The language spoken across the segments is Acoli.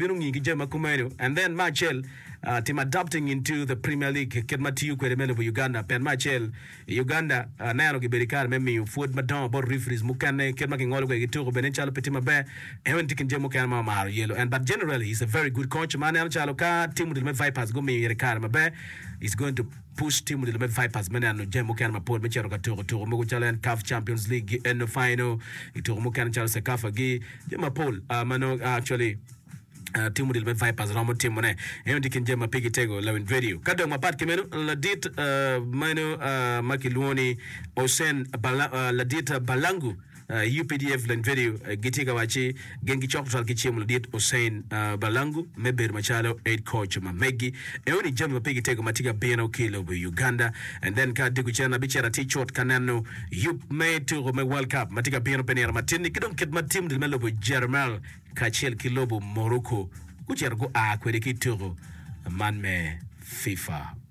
bino ngi ki jami ma kumeno and then me acel tim adopting into the premier league kit ma tiyo kwede me lobo Uganda pien me acel i Uganda aneno gibedo i kare me miyo pwod madongo bot referees mukene kit ma kingolo kwede ki tuko bene calo pe tye maber eno en tye kin jami mukene ma omaro yelo and but generally he's a very good coach ma aneno calo ka tim odilo me Vipers gumiyo ite kare maber he's going to Push tim olilo me Vipers me neno jami mukene mapol me cito ka tuko tuko mogo calo en CAF Champions League gi eno final i tuko mukene calo Cecafa gi jami mapol ma nongo actually tim olilo me Vipers romo timo ne. Eno tye kin jami ma pigi tego Lawin Radio. Ka dok mapat ki meno, ladit meno ma kilwongo ni Hossein Bala, ladit Balangu Updf lend video gitye ka wacci gin gicok tutwal ki cimo ladit Hussein Balangu me bedo macalo Head Coach ma meggi eo ni jami ma pigi tego ma tye ka bino ki ilobo Uganda and then ka Dugu cen abicito atye cut ka neno yub me tuku me World Cup ma tye ka bino pi nino matin ni ki dong kit ma team me lobo Germal kacel ki lobo Morocco gucito gua kwede ki ituku man me FIFA.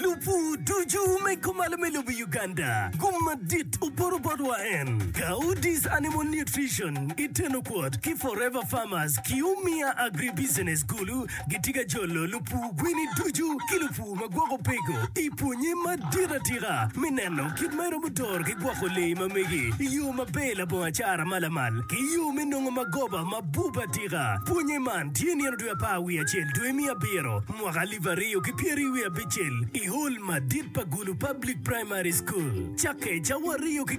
Lupu ducu me kumalo me lobo Uganda gum madit oporo botwa en Kaudis Animal Nutrition i teno kwot ki Forever Farmers ki Umia Agri Business kulu gitye ka jolo lupu gwini ducu ki lupu ma gwoko peko i pwonye madit atika me neno kit ma iromo doro ki gwoko lee ma megi i yo maber labongo acara ma lamal ki yo me nongo magoba ma bup atika. Pwonye man tye nino dwe apar wiye acel dwe me abiro mwaka alip aryo ki pyeri wiye abicel i hol madit pa Gulu Public Primary School, Cakeca, Wariyo ki